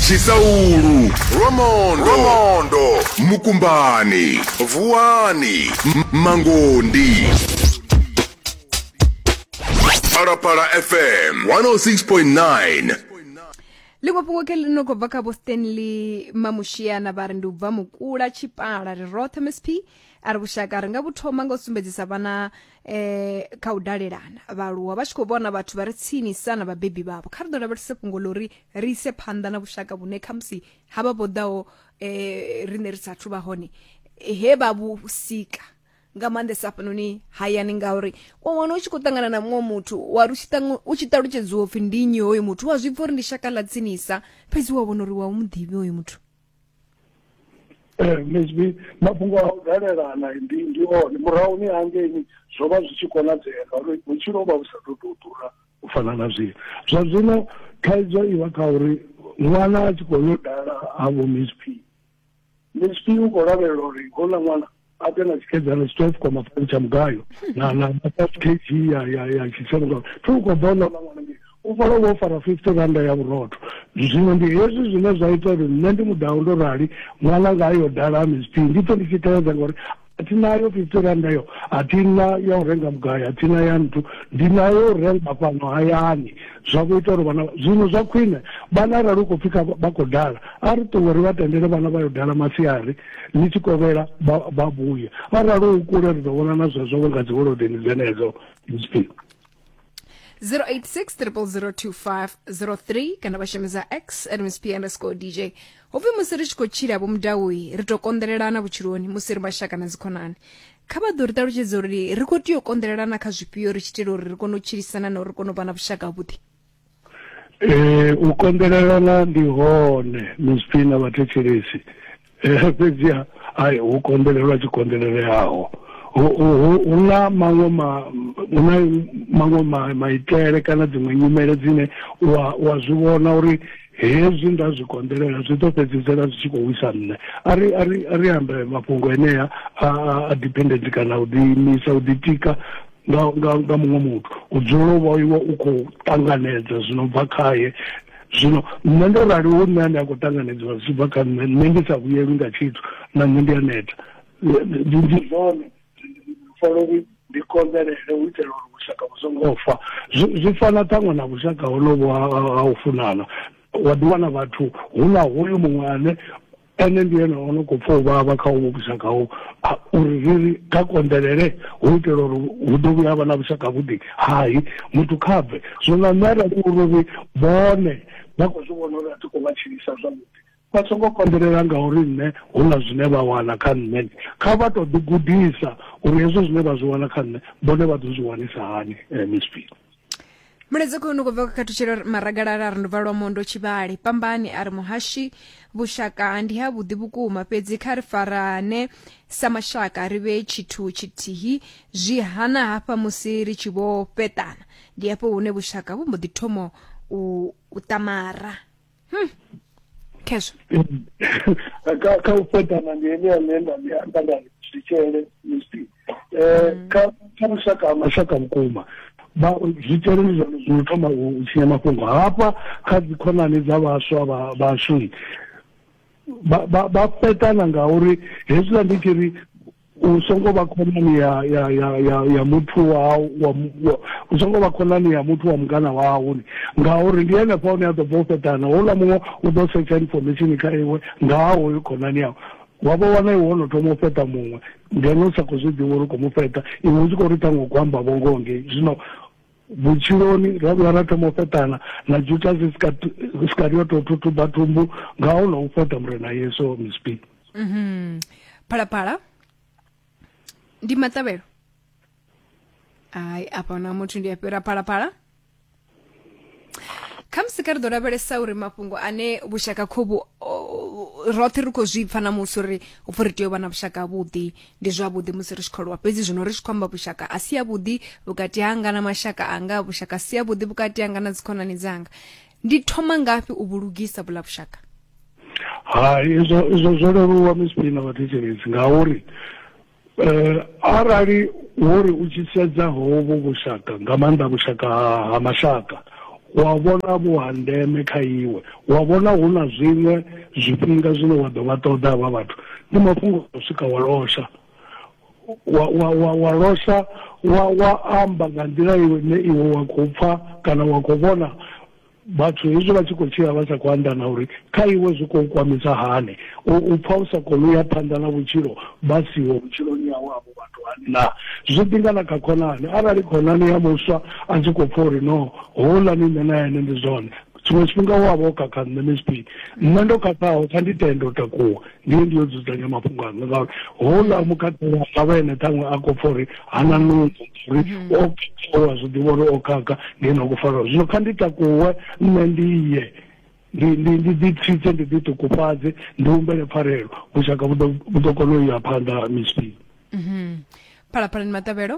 tshisaulu lwamondo lwamondo mukumbani vuwani M- mangondi phalaphala fm 106.9 ḽiṅwe fhungo ke ḽi no khou bva kha vho stanley mamushiana vha ri ndi u bva mukula tshipala ri roṱhe msp a ri vhushaka ri nga vhu thoma nga u sumbedzisa vhana eh kha u dalelana vhaaluwa vha tshi khou vhona vhathu vha re tsinisa na vhabebi vhavho kha ri ḓo lavhelese fhungo ḽo ri ri ise phanḓa na vhushaka vhune khamusi ha vha vho ḓaho um eh, riṋe ri sathu vha hone he vha vhu sika nga maanḓesa hafhanoni hayani ngauri wa wana u tshi khou ṱangana na muṅwe muthu wa ri u tshi ṱalutshedziwa upfhi ndi nnyi hoyo muthu wa zwi pfa uri ndi shaka ḽa tsinisa fhedzi wa vhona uri wa u mu ḓivhi hoyo muthu Eh, msb mafhungo a u dalelana ndi ndi one murahu ni hangeini zwo vha zwi tshi konadzea ngauri vhutshilo ho vha vhu sa tou tou ḓura u fana na zwino zwa zwino thaidzo i vha kha uri ṅwana a tshi khou yo dala ha vho msp msp u khou lavhelela uri houḽa ṅwana a ḓe na tshikedzana tshi twelve koma fani tsha mugayo na na five kg ya ya ya tshitshavha ngauri thi u khou ḓa u ḽa ḽa ṅwana ngei u fara vho fara fifty randa ya vhurotho zwino ndi hezwi zwine zwa ita uri nṋe ndi muḓaho ndo rali ṅwana nga yo dala mizp ndi pfe ndi tshi teledza ngori a thi nayo fifty randa yo a thi na ya u renga mugayo a thi na ya nthu ndi nayo u renga fhano hayani zwa kho ita uri vhana zwino zwa khwine vhana arali u khou pfhi vha khou dala a ri ṱuwe ri vha tendele vhana vha yo dala masiari Ni tshi kovhela vha, vha vhuye. Arali hu kule ri ḓo vhonana zwezwo nga dziholodeni dzenedzo. Zwifhio? 086 002503 kana vha shumisa x at msp underscore dj hopfi musi ri tshi khou tshila vho mudauyi ri tou konḓelelana vhutshiloni musi ri mashaka na dzikhonani kha vha ḓo ri ṱalutshedza uri ri khou tea u konḓelelana kha zwifhio ri tshi itela uri ri kone u tshilisana na uri ri kone u vha na vhushaka havhuḓi Ee u konḓelelana ndi hone mizwi na vhathetshelesi eh, fhedziha ai hu konḓelelwa tshi konḓeleleaho hu na maṅwe hu na maṅwe maitele kana dziṅwe nyimele dzine wa zwi vhona uri hezwi nda zwi konḓelela zwi ḓo fhedzisela zwi tshi khou wisa nṋe a ri a ri a ri ambe mafhungo enea a a dependent kana u ḓiimisa u ḓitika nga nga nga muṅwe muthu u dzulela u vha iwe u khou ṱanganedza zwi no bva khaye zwino nṋe ndo rali hu nṋe ane a khou ṱanganedziwa zwi tshi bva kha nṋe nṋe ndi sa vhuyelwi nga tshithu na nṋe ndi a neta ndi zwone folo uri ndi konḓelele u itela uri vhushaka vhu songo fa zwi fana ṱhaṅwe na vhushaka honovho ha u funana wa ḓiwana vhathu hu na hoyu muṅwe ane Ene ndi ene o no khou pfa u vhavha kha uvho vhushaka ho ha uri ri ri kha konḓelele hu u itela uri hu ḓo vhuya ha vha na vhushaka havhuḓi. Hai, muthu kha bve! Zwino na nṋe arali hu uri ri vhone vha khou zwi vhona uri a thi khou vha tshilisa zwavhuḓi, vha songo konḓelela ngauri nṋe hu na zwine vha wana kha nṋe. Kha vha tou ḓigudisa uri hezwo zwine vha zwi wana kha nṋe vhone vha ḓo zwi wanisa hani. Miss B. mulaedza khou no khou bva kha khathutshelo maragalala a ri ndubva lwa mondo tshivhale pambani a ri muhashi vhushaka ndi ha vhuḓi vhukuma fhedzi kha ri farane sa mashaka ri vhe tshithu tshithihi zwi hana hafha musi ri tshi vho fheṱana ndi hafho hune vhushaka vhu mbo ḓi thomo u, u ṱamara Hmm. khezwo kha u fhedana ndi ene ane nda ndi amba nda zwitshele musi um kha kha lushaka ha mashaka vhukuma zwitshele ndi zwone zwino thoma u tshinya mafhungo hafha kha dzikhonani dza vhaswa vhashu vha fhetana ngauri hezwiḽa ndi tshi ri u songo vha khonani ya ya ya ya ya muthu wa wa u songo vha khonani ya muthu wa mungana wau ngauri ndi henefha hune a ḓo bva u fhetana houḽa muṅwe u ḓo setsha information kha iwe nga ha hoyo khonani yau wa vha wana iwe wono thoma u fheṱa muṅwe ngeno u sa khou zwi ḓivha uri u khou mu fheṱa iwe u tshi khou ri ṱhaṅwe u khou amba vhongoho ngei zwino vhutshiloni ra vhuya ra thoma u fheṱana na jutasi sikari yo tou thuthuba thumbu nga ho no u fheṱa murena yesu miss b Mhm. Phalaphala ndi maṱavhelo. Ai apa na muthu ndi a fhira phalaphala. khamusi kha ri ḓo lavhelesa uri mafhungo ane vhushaka khobu roṱhe ri khou zwi pfa na musi uri upfhi ri tea u vha na vhushaka havhuḓi ndi zwavhuḓi musi ri tshi khou lwa fhedzi zwino ri tshi khou amba vhushaka a si avhuḓi vhukati hanga na mashaka anga vhushaka a si avhuḓi vhukati hanga na dzikhonani dzanga ndi thoma ngafhi u vhulugisa vhula vhushaka hai izwo izwo zwo leluwa misipini na vhathetshelesi ngauri um arali wori u tshi sedza hovho vhushaka nga maanḓa vhushaka ha mashaka wa vhona vhu ha ndeme kha iwe wa vhona hu na zwiṅwe zwifhinga zwine wa ḓo vha ṱoḓa havha vhathu ndi mafhungo a swika wa losha wa, wa, wa, wa losha wa, wa amba nga nḓila iwe ne iwe wa khou pfa kana wa khou vhona vhathu hezwi vha tshi khou tshila vha sa khou andana uri kha iwe zwi khou kwamisa hani u pfa u sa koni u ya phanḓa na vhutshilo vha siho vhutshiloni yawe avho vhathu hani na zwi ḓinga na kha khonani arali khonani ya muswa a tshi khou pfa uri no houḽani nṋe na ene ndi zwone tshiṅwe tshifhinga u a vha o khakha nṋe msp nṋe ndo khakhaho kha ndi tende u takuwa ndi ye ndi yo dzudzanya mafhungo anga ngauri houḽa mukhakhela a vha ene ṱhaṅwe a khou pfa uri hana nungo uri mhm. o khakhawa zwi ḓivha uri o khakha ndi ene a khou faraho zwino kha ndi takuwe nṋe ndi ye ndi ndi ndi ḓi tsitse ndi ḓi ṱukufhadze ndi humbele pfarelo vhushaka vhu ḓo kona u ya phanḓa msp mhm. phalaphalani maṱavhelo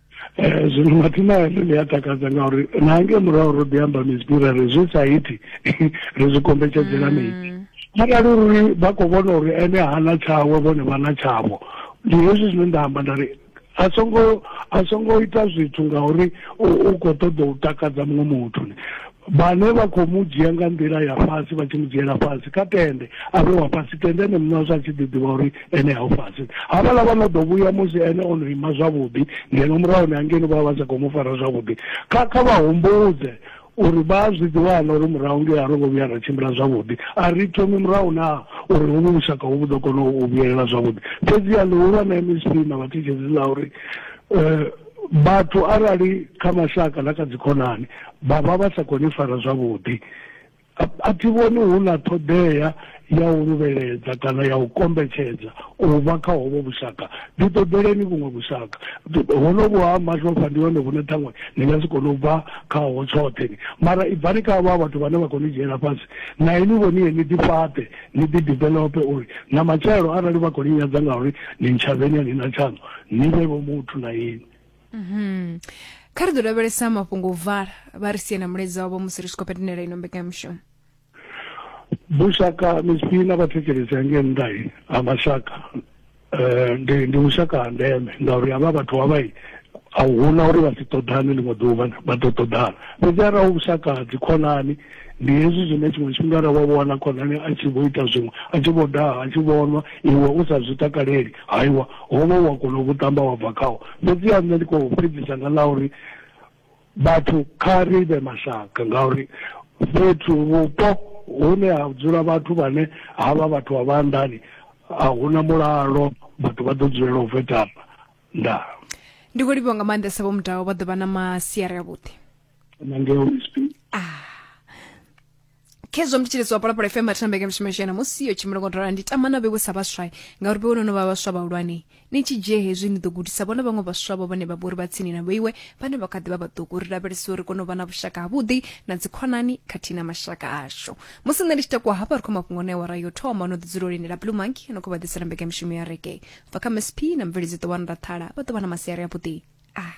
Eh, zwino mathina ane ḽi a takadza ngauri na nge murahu ro ḓi amba mizwi ra ri zwi sa iti ri zwi kombetshedzela mm. mini arali uri vha khou vhona uri ene hana tshawe vhone vha na tshavho ndi hezwi zwine nda amba nda ri a songo a songo ita zwithu ngauri u khou ṱoḓa u takadza muṅwe muthu vhane vha khou mu dzhia nga nḓila ya fhasi vha tshi mu dzhiela fhasi kha tende a vhe wa fhasi tende ene muṋe wazwo a tshi ḓiḓivha uri ene ha u fhasi havhala vha no ḓo vhuya musi ene o no ima zwavhuḓi ngeno murahuni hangeni vha vha sa khou mu fara zwavhuḓi kha kha vha humbudze uri vha a zwi ḓiwana uri murahu ngei a ro ngo vhuya ra tshimbila zwavhuḓi a ri thomi murahu naa uri hovhu vhushaka hu vhu ḓo kona u vhuyelela zwavhuḓi fhedziha ḽihulwane msp na vhathitshedzi ḽa uri um vhathu arali kha mashaka na kha dzikhonani vha vha vha sa khou ni fara zwavhuḓi a thi vhoni hu na ṱhoḓea ya u luvheledza kana ya u kombetshedza u vha kha hovho vhushaka ndi ṱoḓeleni vhuṅwe vhushaka hono vhu ha mashofha ndi hone vhune ṱhaṅwe ni nga si kone u bva khaho tshoṱhe ni mara i bvani kha havha vhathu vhane vha khou ni dzhiela fhasi na ini vhoniye ni ḓifhaṱe ni ḓidevelope uri na matshelo arali vha khou ni nyadza ngauri ni ntshavheni a ni na tshaṋu ni vhe vho muthu na inwi mhm. kha ri ḓo lavhelesa mafhungo u vala vha ri sie na muledzi wavho musi ri tshi khou petenela ino mbekanyamushumo vhushaka misi na vhathetshelesi hange nnḓa ha mashaka um ndi ndi vhushaka ha ndeme ngauri havha vhathu havhai a huna uri vha si ṱoḓane ḽiṅwe ḓuvha vha ḓo ṱoḓana fhedzi arali vhushaka ha dzikhonani Ndi hezwi zwine tshiṅwe tshifhinga ra wa wana khonani a tshi vho ita zwiṅwe, a tshi vho daha, a tshi vho nwa, iwe u sa zwi takaleli. Haiwa, ho vha hu a kona u vhu ṱamba wa bva khaho. Fhedziha nṋe ndi khou fhedzisa nga ḽa uri, Vhathu kha ri vhe mashaka, ngauri fhethu, vhupo, hune ha dzula vhathu vhane ha vha vhathu vha vha nḓani, a hu na mulalo, vhathu vha ḓo dzulela u vetana. Ndaa. Ndi khou livhuwa nga maanḓesa Vho Mudau, vha ḓo vha na masiari avhuḓi. nangeo msp ah khezwo mthetshelesi wa polapolo fm athambeke mshimashena musi yo tshimulongotola ndi tamana vhewe sa vhaswa ngauri vhewe nono vha vhaswa vhahulwane ni tshi dzhie hezwi ni ḓo gudisa vhona vhaṅwe vhaswa vho vhane vha vhori vha tsini na vhoiwe vhane vha kha ḓi vha vhaṱuku ri lavhelesa uri kone u vha na vhushaka havhuḓi na dzikhonani khathihi na mashaka ashu musi nṋe ndi tshi takuwa hafha ri khou mafhungo ne wara yo thoma no ḓi dzula lindela blue monkey no khou vha ḓisela mbekanyamushumo ya rege bva kha msp na mveledziṱo wa ndathala vha ḓo vha na masiari avhuḓi ah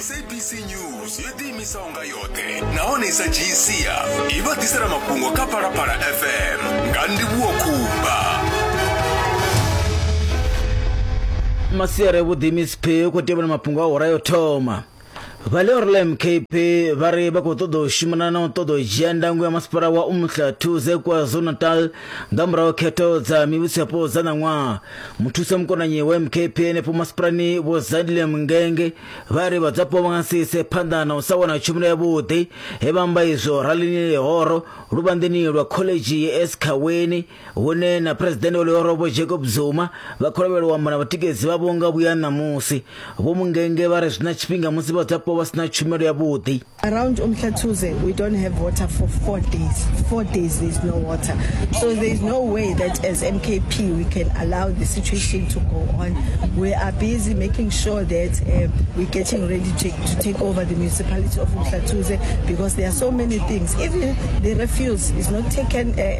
sabc news yo ḓiimisa unga yoṱhe nahone i sa dzhii sia i vha ḓisela mafhungo kha phalaphala fm nga ndivhuwo khumba masiari vhuḓi miss p khou tevhela mafhungo a hora yo thoma Vha Leorlem KP vha ri vha khou ṱoḓa u shumana na u ṱoḓa u dzhia ndango ya masipala wa Umhla Thuze KwaZulu-Natal nga murahu khetho dza mivhusoyapo dza ṋaṅwaha. Muthusa mukonanyi wa MKP henefho masipalani Vho Zadile Mngenge vha ri vhadzwapo vha nga si ise phanḓa na u sa wana tshumelo yavhuḓi he vha amba izwo ralini lihoro luvhanḓeni lwa khoḽedzhi ya Eskaweni hune na phuresidennde wa ḽihoro vho jacob zuma vha khou lavhelelwa amba na vhatikedzi vhavho nga vhuya ṋamusi vho mungenge vha ri zwi na tshifhinga musi vhadzulapo vha si na tshumelo yavhuḓi around umhlathuze we don't have water for four days four days there is no water so there is no way that as mkp we can allow the situation to go on we are busy making sure that uh, we're getting ready to, to take over the municipality of umhlathuze because there are so many things even the refuse is not taken uh,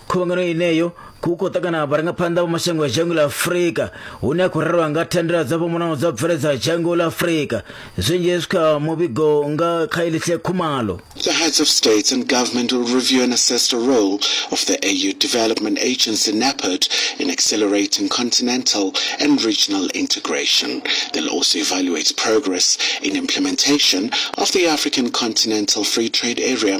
khuvhangano ineyo ku khou ṱangana vharangaphanḓa vha mashango a dzhango ḽa afurika hune a khou rerwa nga thandela dzo fhambanaho dza bveledza dzhango ḽa afurika zwinzhi hezwi kha muvhigo nga kha elihle khumalo The heads of states and government will review and assess the role of the AU Development Agency NAPAD in accelerating continental and regional integration. They'll also evaluate progress in implementation of the African Continental Free Trade Area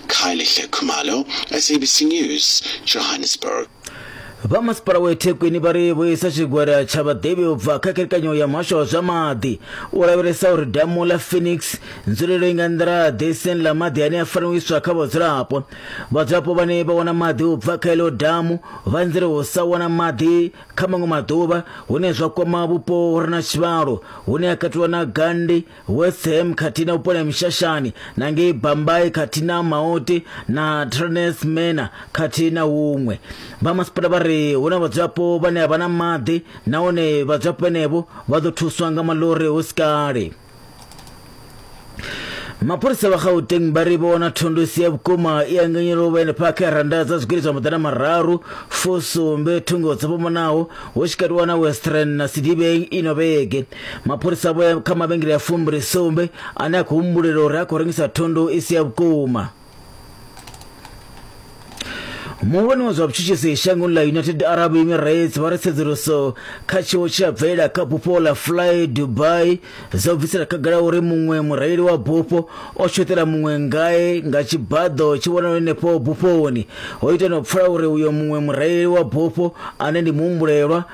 Khayelihle Khumalo, SABC News, Johannesburg. vha masipala wa ethekwini vha ri vhuisa tshigwada tsha vhaḓivhi u bva kha kherekanyo ya muhasho wa zwa maḓi u lavhelesa uri damu ḽa phoenix nzulelo i nga nḓiraḓe siani ḽa maḓi ane a fanela u iswa kha vhadzulapo vhadzulapo vhane vha wana maḓi u bva kha ilo damu vha nzela u sa wana maḓi kha maṅwe maḓuvha hune zwa kwama vhupo hu re na tshivhalo hune a katelwa na gandi Westham khathihi na Vhupolem Shashani na ngei Bambai khathihi na Maoti na Traneth Mena khathihi na huṅwe. Vha masipala vha ri hu na vhadzulapo vhane a vha na maḓi nahone vhadzulapo vhenevho vha ḓo thuswa nga maḽori hu si kale. Mapholisa vha Gauteng vha ri vho wana thundu isi ya vhukuma i anganyela u vha henefha kha randa dza zwigidi zwa maḓana mararu fusumbe thungo dzo fhambanaho hu tshi katiwa na Western na Sidibeng ino vhege mapholisa vho ya kha mavhengele ya fumbri sumbe ane a khou humbulela uri a khou rengisa thundu i si ya vhukuma muhulwane wa zwa vhutshutshisi shangoni ḽa united arab emirates vha ri tsedzuluso kha tshiwo tshi a bvelela kha bufho ḽa fly dubai dzo bvisela khagala uri muṅwe mureili wa bufho o tshoṱela muṅwe ngae nga tshibaḓo tshi vhonala henefho bufhoni ho ita no pfula uri uyo muṅwe mureili wa bufho ane ndi muhumbulelwa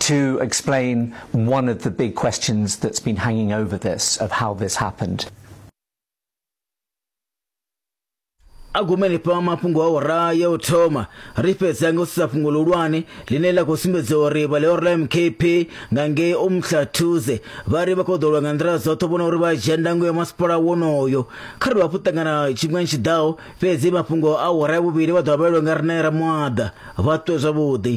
to explain one of the big questions that's been hanging over this of how this happened. agumeni pa mafhungo a ora ya u thoma ri fhedza nga u sedza fhungo ḽihulwane ḽine ḽa khou sumbedza uri vhaleoro ḽa mkp nga ngei umhlathuze vha ri vha khou ḓolwa nga nḓila dzoṱhe vhona uri vha dzhia ndango ya masipala wonoyo kha ri vha hafhu ṱangana tshifhingani tshiḓaho fhedzi mafhungo a ora ya vhuvhili vha ḓo vha vhalelwa nga rine ra muaḓa vha ṱuwe zwavhuḓi